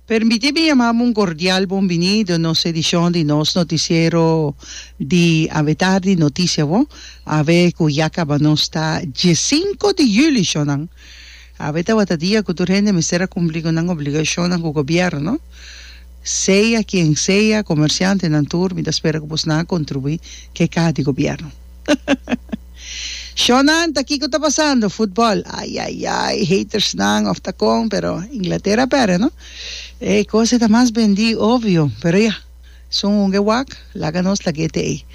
Permiti mi yama bo un cordial bonbinido nos edicion di nos noticiero di awetardi Noticia bo awe cu ya caba nos ta diesinco di juli sho nan awe tawata dia cu tur hende mester a cumpli cu nan obligacionnan cu gobierno sea quien sea comerciantenan tur mi ta spera cu bo sna a contribui ke cas di gobierno. Shonnan ta kiko ta pasando futbol ay ay ay haters nan of ta kon pero Inglaterra perde no e kose ta mas bendi obvio pero ya su hunge wak laga nos lag'e te ey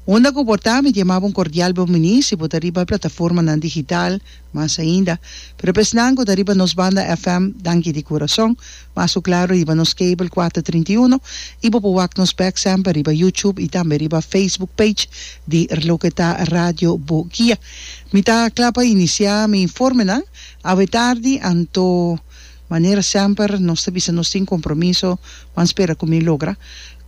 unda ku por ta mi diamaba un kordial bonbiní si bo ta riba plataformanan digital. Mas ainda, pero pa esnan ku ta riba nos banda FM, danki di kurason. Mas ku klaro riba nos kabel kuater trinta i uno, i bo por wak nos bek semper riba YouTube i tambe riba Facebook page di Loke Ta Radio Bo Guia. Mi ta kla pa inisiá mi informenan awe tardi, anto manera semper nos ta bisa nos tin kompromiso, Juan spera ku mi logra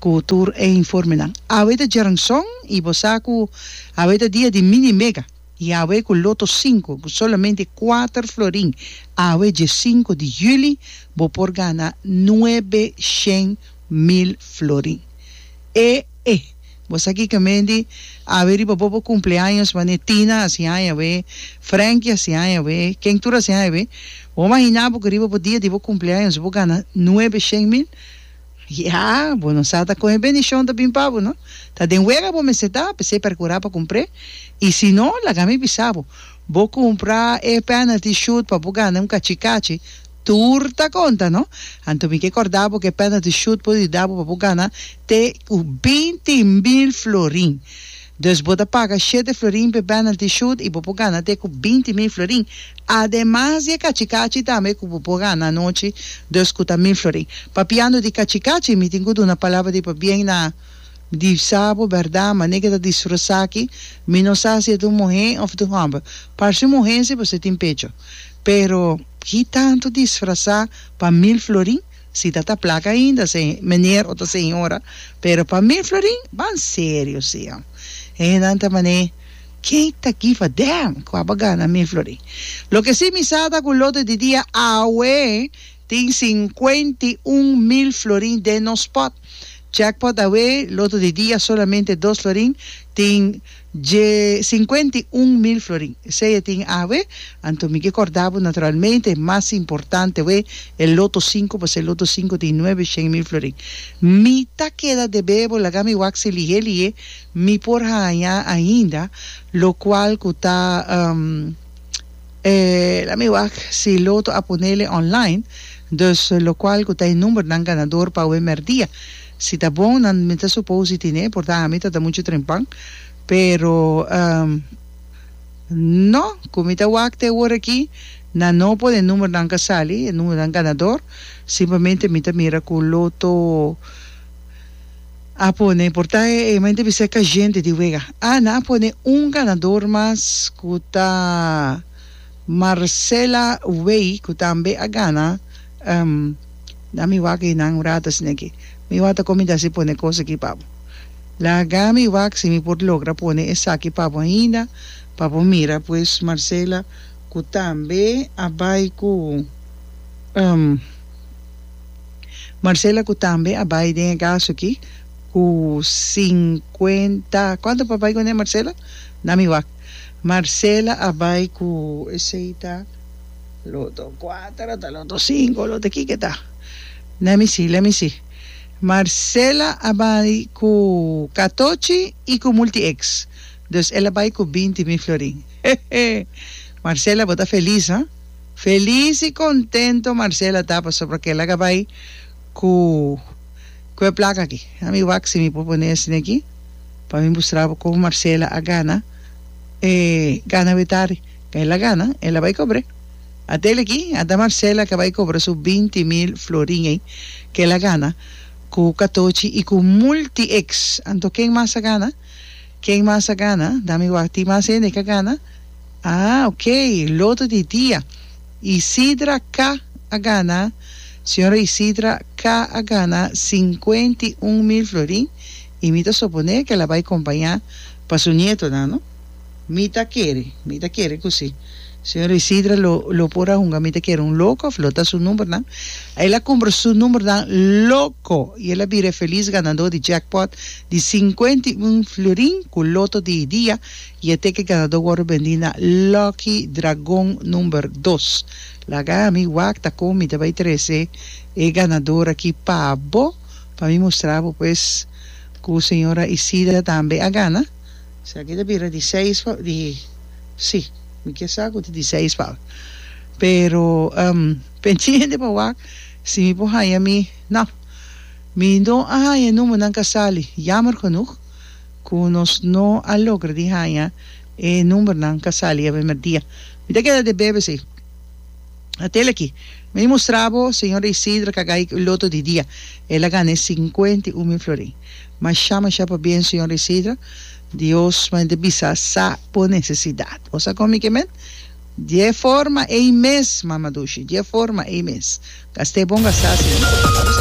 ku tur e informenan. Awe ta djèrnson i bo sa ku awe ta dia di mini mega. Yahweh cu loto cinco cu solamente cuater florin awe dje cinco di juli bo por gana nuebe shen mil florin e e bo sa kico me di awe riba bobo cumpleaños mane Tina a siña awe Frankie a siña awe ken tur a siña awe bo mahinabo cu riba bo dia di bo cumpleaños bo gana nuebe shen mil Ya, bo no sa ta con e bendición ta bin pa bo, no? Ta den wega bo mester ta, p'esey percura pa cumpr'e, y si no, laga mi bisa bo, bo cumpra e penalty shoot pa bo gana un cachicachi, tur ta conta, no? Anto mi ke corda bo cu e penalty shoot por di da bo pa bo gana te cu binti mil florin. Dus bo ta paga shete florin p'e penalty shoot i bo por gana te ku binti mil florin, ademas di e kachikachi tambe ku bo por gana anochi, dus ku ta mil florin. Papiando di kachikachi, mi tin ku duna palabra di pabien na di sabo, bèrdat, manera ke ta disfrosá aki, mi no sa si e ta un muhé òf ta un hòmber. Parse un muhé si pasobra tin pecho. Pero ki tantu disfrasá pa mil florin? Si ta ta plak ainda se meneer o ta señora pero pa mi Florin ban serio sia hendenan ta mané ken ta give a damn cu a ba gana mi Florin loke si mi sa ta cu lote di dia awe tin cincuenta y un mil Florin den nos pot jackpot awe lote di dia solamente dos Florin tin Dje sinkuenta i un mil florin. Esei e tin awe. Anto mi ke kòrda bo, naturalmente, e mas importante we, e loto sinku, pasobra e loto sinku tin nuebe shen mil florin. Mi ta keda debé bo, laga mi wak si lihé lihé mi por haña ainda, lokual ku ta, laat mi wak si loto a ponele online, dus lokual ku ta e numbernan ganador pa awe mèrdia. Si ta bon nan mi ta supos di tine por ta ami ta ta mucho tren pan pero ehm no cu mi ta wak te wor aki nan no por e numero nan ka sali e numero nan ganador simplemente mi ta mira cu loto a pone por ta e mi ta bisa e cayente di wega ah nan a pone un ganador mas cu ta Marcela Wey cu tambe a gana ehm. Na mi wak ei nan wrata asina aki. Mi wak ta comida si pone cos aki pa bo. Laga mi wak si mi por logra pone esaki pa bo ainda pa bo mira pues Marcela cu tambe a bay cu Marcela cu tambe a bay den e gaso aki cu cincuenta cuanto pa bay cun'e Marcela? Na mi wak Marcela a bay cu esey ta. Loto cuater ota loto cinco loto kiko eta lami si lami si Marcela a bay cu catochi y cu multi ex dos ela bay cu binti mil florin hehe Marcela bo ta feliz ha feliz y contento Marcela ta pasobra kela ga bay cu cu e placa aki a mi wak si mi por pone esne aki pa mi mustrabo con Marcela a gana e gana wetari. Kei la gana el a bai cobre. A tel aki a da Marcela ka bai cobra su binti mil florin ei ke la gana ku katochi i ku multi ex. Anto ken mas a gana? Ken mas a gana? Dami wak tin mas hende ka gana? Ah ok loto di dia Isidra ka a gana Señora Isidra ka a gana sinkuenti un mil florin i mi ta soponé ke la bai kompañá pa su nietonan no. Mi ta kere, mi ta kere ku si señor Isidre lo lo por a hunga mi ta kere un loko òf lo ta su numbernan. A el a kumpra su numbernan loko i el a bira e felis ganadó di jackpot di sinkuenta i un florin ku loto di e dia i e teke ganadó wòrdu bendí na Lucky Dragon number dos. Laga ami wakta kon mi ta bai trese e ganador aki pa bo pa mi mustra bo pues ku señora Isidre tambe a gana. Esaki ta bira di seis pa di si mi kier sa ku ta di seis pa mi pero pendiente pa wak si mi por haña mi no mi no a haña e number nan ka sali yamer genoeg ku nos no a logra di haña e number nan ka sali e primer dia mi ta keda debebe si atel aki mi mustra bo señora Isidra Kagay loto di dia el a gana e singkwentu i un mil florin. Masha masha pabien señor Isidra Dios mei de bisa sa bo necesidad bo sa con mi ke men die forma ei mes mama dushi die forma ei mes gast'e bon gast'e asina.